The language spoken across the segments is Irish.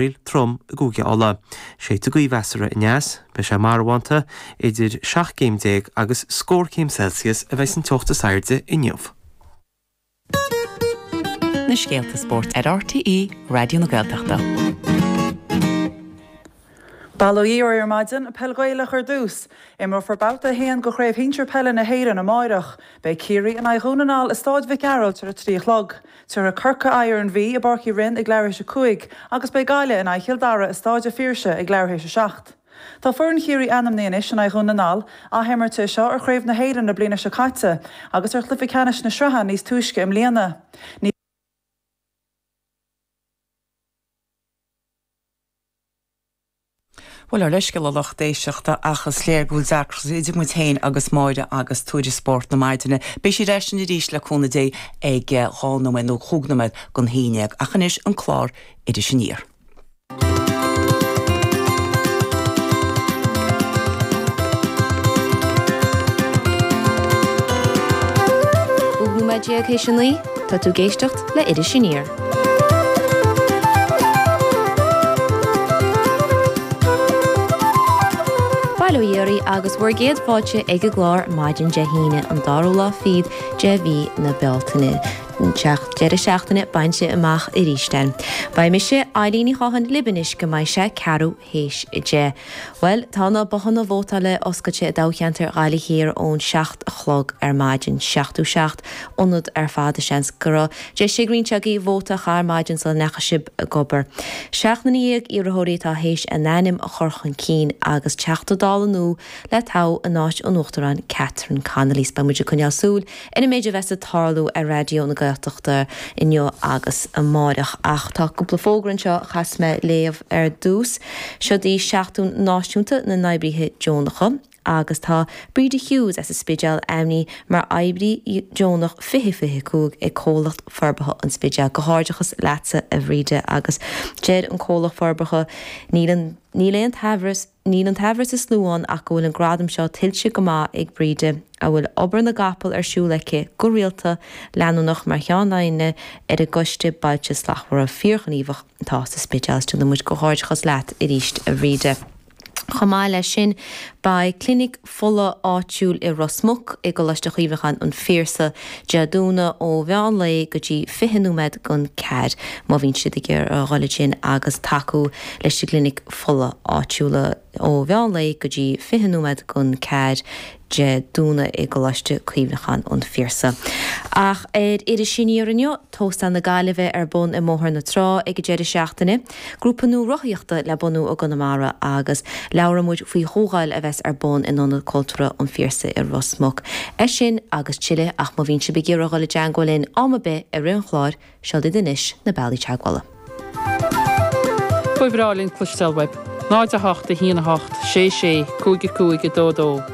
Baoill trom i gCúige Uladh. Séidfidh gaoth mheasartha aneas. Beidh sé marbhánta. Idir seacht gcéim déag agus scór céim Celsius a bheas an teocht is airde inniu. na scéalta spóirt ar RTÉ Raidió na Gaeltachta. Bail ó Dhia oraibh ar maidin, peil Ghaelach ar dtús. Imreofar babhta a haon de Chraobh Shinsir Peile na hÉireann amáireach. Beidh Ciarraí in aghaidh Dhún na nGall i Stáid Mhic Gearailt ar a trí a chlog. Tabharfaidh Corcaigh aghaidh ar an Mhí i bPáirc Uí Rinn ag leathuair théis a cúig agus beidh Gaillimh in aghaidh Chill Dara i Stáid a' Phiarsaigh ag leathuair théis a seacht. Tá foireann Chiarraí ainmnithe anois in aghaidh Dhún na nGall, athimirt é seo ar Chraobh na hÉireann na bliana seo caite agus ar chluife ceannais na sraithe níos túisce i mbliana. Ní. Bhuel, ár leithscéal a lucht éisteachta ach is léir go bhfuil deacracht idir muid féin agus Máire agus Tuairisc Spórt na maidine. Beidh sí ar ais linn arís, le cúnamh Dé, ag dhá nóiméad nó chúig nóiméad gon haon déag. Ach anois, an clár Iris Aniar. Cúig nóiméad déag théis a naoi. Tá tú ag éisteacht. le Iris Aniar. Bail ó Dhia oraibh agus bhur gcéad fáilte ag an gclár maidin Dé hAoine, an dara lá fichead de mhí na Bealtaine. Tá an deireadh seachtaine bainte amach aríst againn. Beidh mise, Eibhlín Ní Chonghaile, libh anois go mbeidh sé ceathrú. théis 10. Bhuel, tá na bothanna vótála oscailte i dtoghcheantar Ghaillimh Thiar ón 7 a chlog ar maidin. Seachtó seacht ionad ar fad is seans go raibh deis ag roinnt agaibh vóta a chaitheamh ar maidin sula ndeachaigh sib ag obair. Seacht nduine dhéag iarrthóirí atá théis a n-ainm a chur chun cinn agus Teachta Dála nua le toghadh in áit an Uachtaráin Catherine Connolly. So beidh muid ag coinneáil súil Ar an méid a bheas ag tarlú ar Raidió na Gaeltachta inniu agus amáireach. Ach tá cúpla fógra anseo a chaithfeas mé a léamh ar dtús. Seod í Seachtain Náisiúnta na nOibrithe Deonacha agus tá Bríde Hughes as an Spidéal ainmnithe mar oibrí deonach 2025 ag Comhlacht Forbartha an Spidéil. Comhghairdeachas leatsa a Bhríde agus deir an Comhlacht Forbartha, Níl aon t-aimhreas, Níl an t-aimhreas is lú ann ach go bhfuil an gradam seo tuillte go maith ag Bríde, a bhfuil obair na gcapall ar siúl aici go rialta, leanúnach, mar cheannaire ar an gCoiste Bailte Slachtmhara fíorghníomhach atá sa Spidéal. Is déanann muid comhghairdeachas leat aríst, a Bhríde. Chomh maith leis sin, beidh Clinic fola áitiúil i Ros Muc i gColáiste Chuimhneacháin an Phiarsaigh, Dé Domhnaigh ó mheán lae go dtí 20 nóiméad gon ceathair, má bhíonn siad ag iarraidh a dhul ansin, agus tacú leis an gclinic fola áitiúla ó mheán lae go dtí 20 nóiméad gon ceathair, Dé Domhnaigh i gColáiste Cuimhneacháin an Phiarsaigh. Ach ar Iris Aniar inniu, Tóstal na Gaillimhe ar bun i mBóthar na Trá ag an deireadh seachtaine. Grúpa nua rothaíochta le bunú i gConamara agus labhróidh muid faoi chomhdháil a bheas ar bun in Ionad Cultúrtha an Phiarsaigh i Ros Muc. É sin agus tuilleadh ach má bhíonn sibh ag iarraidh dul i dteangmháil linn am ar bith i rith an chláir, seo daoibh anois na bealaí teagmhála. Ba bhreá linn cloisteáil uaibh. 08 1 8 6 6 5 5 2 2.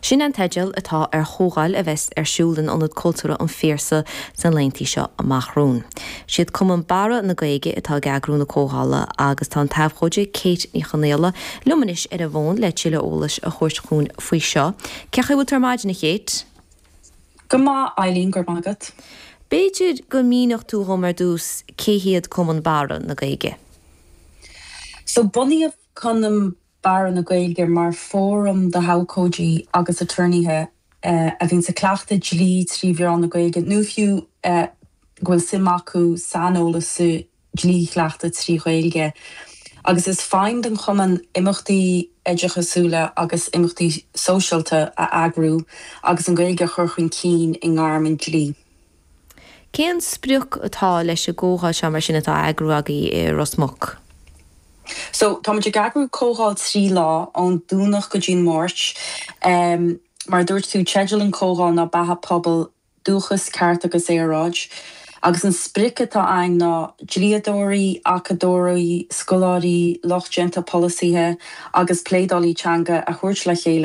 Sin an teideal atá ar chomhdháil a bheas ar siúl in Ionad Cultúrtha an Phiarsaigh sna laetheanntaí seo amach romhainn. Siad Cumann Barra na Gaeilge atá ag eagrú na comhdhála agus tá an t-abhcóide Kate Ní Chonaola liom anois ar an bhfón le tuilleadh eolais a thabhairt dhúinn faoi seo. Cé chaoi a bhfuil tú ar maidin, a Kate? Go maith, Eileen, go raibh maith agat. B'fhéidir go míneofá dhom ar dtús cé hiad Cumann Barra na Gaeilge? So, bunaíodh Cumann Barra na Gaeilge mar fhóram d'abhcóidí agus aturnaetha a bhíonns ag cleachtadh dlí trí mheán na Gaeilge nó fiú go bhfuil suim acu saineolas sa dlí a chleachtadh trí Ghaeilge. Agus is feidhm don chumann imeachtaí oideachasúla agus imeachtaí sóisialta a eagrú agus an Ghaeilge a chur chun cinn i ngairm an dlí. Cén sprioc atá leis an gcomhdháil seo mar sin atá á eagrú agaibh i Ros Muc? So, táimid ag eagrú comhdháil trí lá, ón Domhnach go dtí an Máirt. Mar a dúirt tú, teideal an chomhdháil ná Beatha Pobail, Dúchas, Ceart agus Aeráid. Agus an sprioc atá againn ná dlíodóirí, acadóirí, scoláirí, lucht déanta polasaithe agus pleanálaithe teanga a thabhairt le chéile,